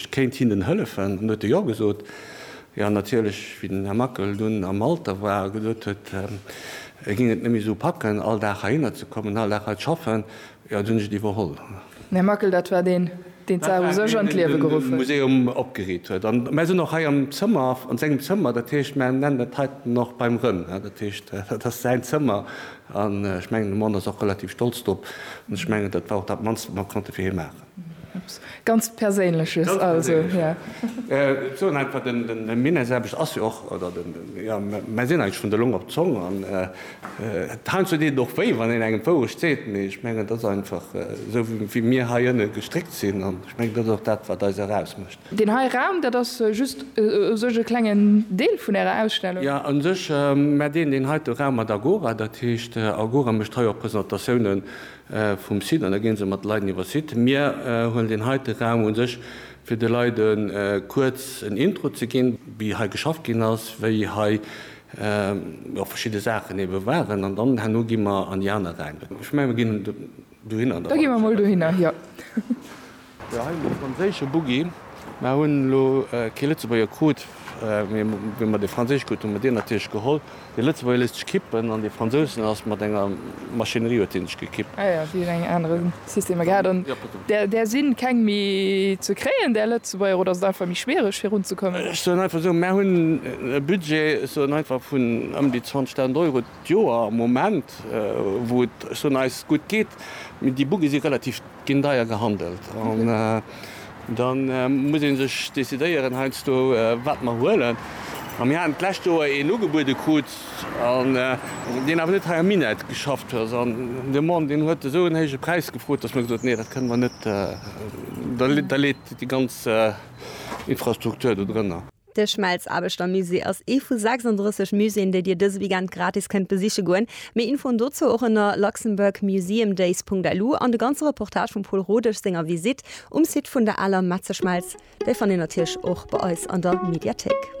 Ech kéint hinnen hëllefen. An du huet e Jo gesot. Jo, natierlech, wéi den Här Mackel dunn am Alter war a gesot huet, e géing et net méi esou packen, all Dag heihinner ze kommen, all Dag hei z'schaffen, jo, dunn hunn ech et iwwerholl. Den Här Mackel, dat war deen, deen d'Saach u sech an d'Liewe geruff huet. Dat war deen, deen de Museum opgeriit huet. A mä sinn och hei am Zëmmer, an sengem Zëmmer, dat heescht, mer nennen dat heiten och beim Rënn, dat heescht, dat ass säin Zëmmer. An ech mengen, de Mon ass och relativ stolz drop. An ech mengen, dat war och dat Mannst, wat mer konnte fir hie maachen. Ganz Perséinleches also. Soen einfach den Minne selwecht ass jo och, oder den, jo mer sinn eigentlech vun der Long op d'Zong an heiansdo deet et och wéi wann een engem d'Wourecht seet, mee ech mengen et ass einfach esou wéi mir hei ënne gestréckt sinn an ech mengen dat ass och dat wat eis erausmécht. Deen hei Raum, dat ass just u sech e klengen Deel vun ärer Ausstellung? Jo u sech, mä deen heite Raum mat Agora, dat heescht Agora mécht hei och Presentatioune vum Site an da ginn se mat de Leiden iwwer Site. Mir huelen deen heite Raum un sech fir de Leide kuerz en Intro ze ginn, wéi hei geschafft ginn ass, wéi hei verschidde Saachen ebe waren an dann herno gi mer an déi aner Räim. Ech menge mir ginn dohinner. Da gi mer mol dohinner, jo. Jo hei mol e franséische Buggi. Mer hunn elo kee Lëtzebuerger krut, mee wéi mer dee franséische krut hu mer deen natierlech geholl. Dee Lëtzebuerger léisst sech kippen an dee Fransousen ass mat enger Maschinerie huet dee sech gekippt. Ah jo, déi hunn eng anere Systemer gehat an där si keng méi ze kréien där Lëtzebuerger oder ass et einfach méi schwiereg virunzekommen? Ech soen einfach esou, mer hunn e Budget, ech soen einfach vun ëm déi 20.000 Euro d'Joer am Moment, wou et ech soen eis gutt geet, mee déi Buggie si relativ. Ginn deier gehandelt an da muss ee sech decidéieren heiansdo wat mer huelen. A mir haten d'lescht Joer een ugebuede krut, deen awer net hei am Minett geschafft huet an de Mann deen huet esou en héije Präis gefrot, datt mer gesot hunn, nee dat kënne mer net, da leet déi ganz Infrastruktur do drënner. De Schmelzaarbechtermusée ass ee vu 36 Muséeën, déi Dir dëse Weekend gratis kënnt besiche goen. Méi Infoen dozou och ënner luxembourgmuseumdays.lu an de ganze Reportage vum Paul Rodesch senger Visitt um Site vun der aler Metzeschmelz, dee fannt Dir natierlech och bei eis an der Mediathéik.